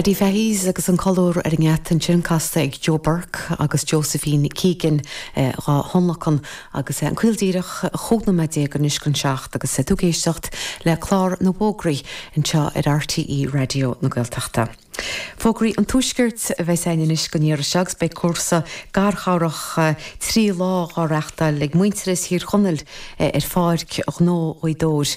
Paddy Fahy's agus an colúr ar an ngeata ansin casta ag Joe Burke agus Josephine Keegan dhá thionlacan agus an caol díreach chúig nóiméad déag anois chun a 7 agus tú ag éisteacht le clár na bhfógraí anseo ar RTÉ Raidió na Gaeltachta. Fógraí an Tuaiscirt a bheas againn anois go ndeireadh seo agus beidh cúrsa garchabhrach trí lá á reáchtáil ag Muintearas Thír Chonaill ar Pháirc Ghnó Ghaoth Dobhair,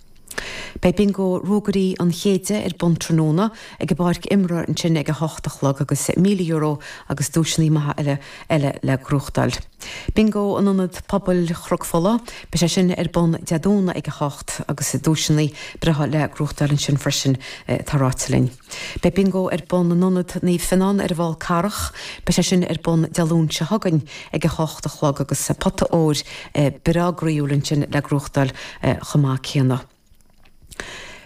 Beidh Bingo Ruagairí an Chéididh ar bun tráthnóna ag an bpáirc imeartha ansin ag a hocht a chlog agus €1,000 agus duaiseanna maithe eile eile le gnóthachtáil. Bingo in Ionad Pobail Chnoc Fola, beidh sé sin ar bun Dé Domhnaigh ag a hocht agus duaiseanna breátha le gnóthachtáil ansin freisin, atá ráite linn. Beidh Bingo ar bun in Ionad Naomh Fionán ar an bhFál Carrach. Beidh sé sin ar bun Dé Luain seo chugainn ag a hocht a chlog agus pota óir breá gnaíúil ansin le gnóthachtáil chomh maith céanna.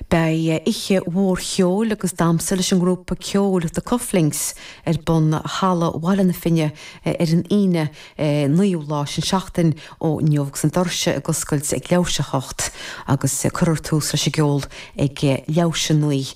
Beidh oíche mhór cheoil agus damhsa leis an ngrúpa ceoil The Cufflinks ar bun i Halla Bhaile na Finne ar an Aoine, naoú lá sin seachtain ó inniu agus na doirse ag oscailt ag leathuair théis a hocht agus cuirfear tús leis an gceol ag leathuair théis a naoi.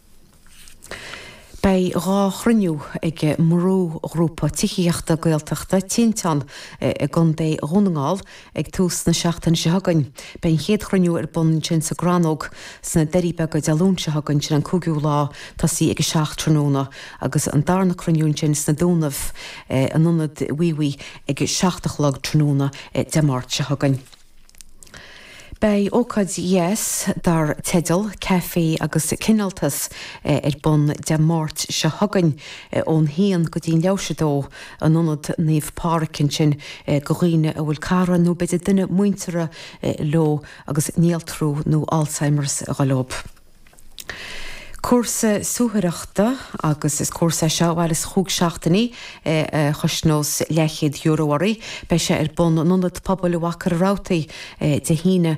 Beidh dhá chruinniú ag an mbrúghrúpa tithíochta Gaeltachta Tinteán i gContae Dhún na nGall ag tús na seachtaine seo chugainn. Beidh an chéad chruinniú ar bun ansin sa gCrannóg sna Doirí Beaga Dé Luain seo chugainn, sin an cúigiú lá, tosaí ag a seacht tráthnóna, agus an darna cruinniú ansin sna Dúnaibh in Ionad Mhíobhaigh ag a seacht a chlog tráthnóna Dé Máirt seo chugainn. Beidh ócáid dheas dar teideal 'Caife agus Cineáltas' ar bun Dé Máirt seo chugainn ón haon go dtí an leathuair théis a 2 in Ionad Naomh Pádhraic ansin do dhaoine a bhfuil cara nó b'fhéidir duine muinteartha leo agus néaltrú nó Alzheimer's ag goil dóibh. Cúrsa suathaireachta agus is cúrsa é seo a mhairfeas chúig seachtainí a chosnós leathchéad euro oraibh. Beidh sé ar bun in Ionad Pobail Mhachaire Rabhartaigh Dé hAoine,